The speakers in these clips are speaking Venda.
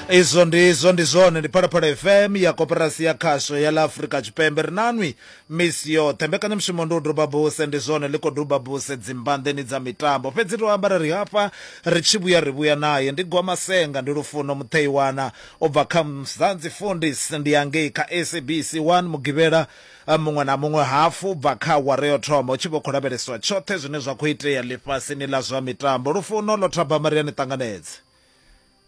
izwo ndi izwo ndi zwone ndi phalaphala fm ya koperasi ya khasho ya ḽa afurika tshipembe ri nanwi misi yoṱhe mbekanyamushumo ndi u duba buse ndi zwone ḽi khou duba buse dzimbanḓeni dza mitambo fhedzi ri ambara ri hafha ri tshi vhuya ri vhuya naye ndi gwamasenga ndi lufuno mutheiwana u bva kha mzanzi fundis ndi yangei kha sabc 1 mugivhela Muṅwe na muṅwe hafu u bva kha awara yo thoma hu tshi vha hu khou lavheleswa tshoṱhe zwine zwa khou itea ḽifhasini ḽa zwa mitambo. Lufuno, Ḽo thabama ri a ni ṱanganedza.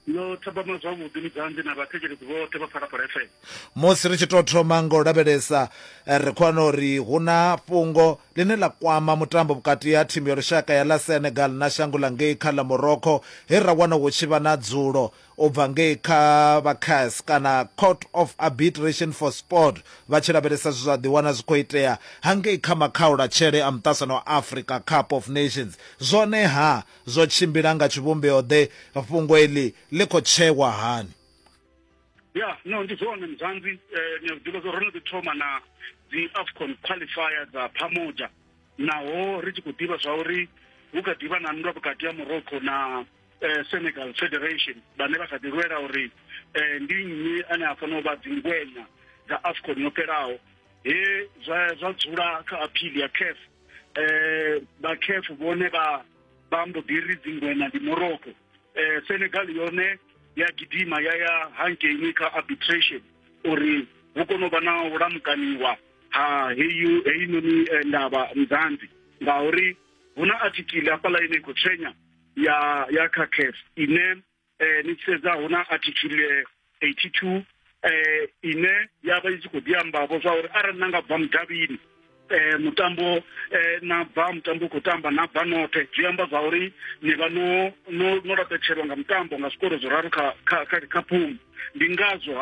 Ḽo thabama zwavhuḓi Mudzanḓi na vhathetshelesi vhoṱhe vha Phalaphala FM. Musi ri tshi tou thoma nga u lavhelesa, ri khou wana uri hu na fhungo ḽine ḽa kwama mutambo vhukati ha thimu ya lushaka ya ḽa Senegal na shango ḽa ngei kha ḽa Morocco he ra wana hu tshi vha na dzulo u bva ngei kha vha cas kana court of arbitration for sport vha tshi lavhelesa zwe zwa ḓiwana zwi khou itea hangei kha makhaulatshele a muṱasano wa africa cup of nations zwone ha zwo tshimbila nga tshivhumbeo ḓe fhungo eḽi ḽi khou tsheiwa hani ya no ndi zwone mzanzi eh, ni a zwiḓivha zwo ro no ḓi thoma na dzi afcon qualifier dza phamoja naho ri tshi khou ḓivha zwa uri hu kha ḓivha na nndwa vhukati ha morocco na eh, Senegal Federation vhane vha kha ḓi lwela uri eh, ndi nnyi ane a fanela u vha dzingwenya dza AFCON yo fhelaho he zwa zwa dzula kha appeal ya CAF eh ba CAF vhone ba ba mbo ḓi ri dzingwenya ndi Morocco eh Senegal yone ya gidima ya ya hangeni kha arbitration uri hu kono vha na u lamukaniwa ha heyi heyi noni eh, ndavha mzanzi ngauri huna article hafhaḽa ine i khou tshenya ya ya kha CAF ine eh, ni tshi sedza hu na article 82 eh, ine ya vha i tshi khou ḓi ambavho zwa uri arali na nga bva mudavhini eh mutambo eh na bva mutambo u khou tamba na bva noṱhe zwi amba zwa uri ni vha no no no laṱetshelwa nga mutambo nga zwikoro zwo raru kha kha kha, kha phumu ndi ngazwo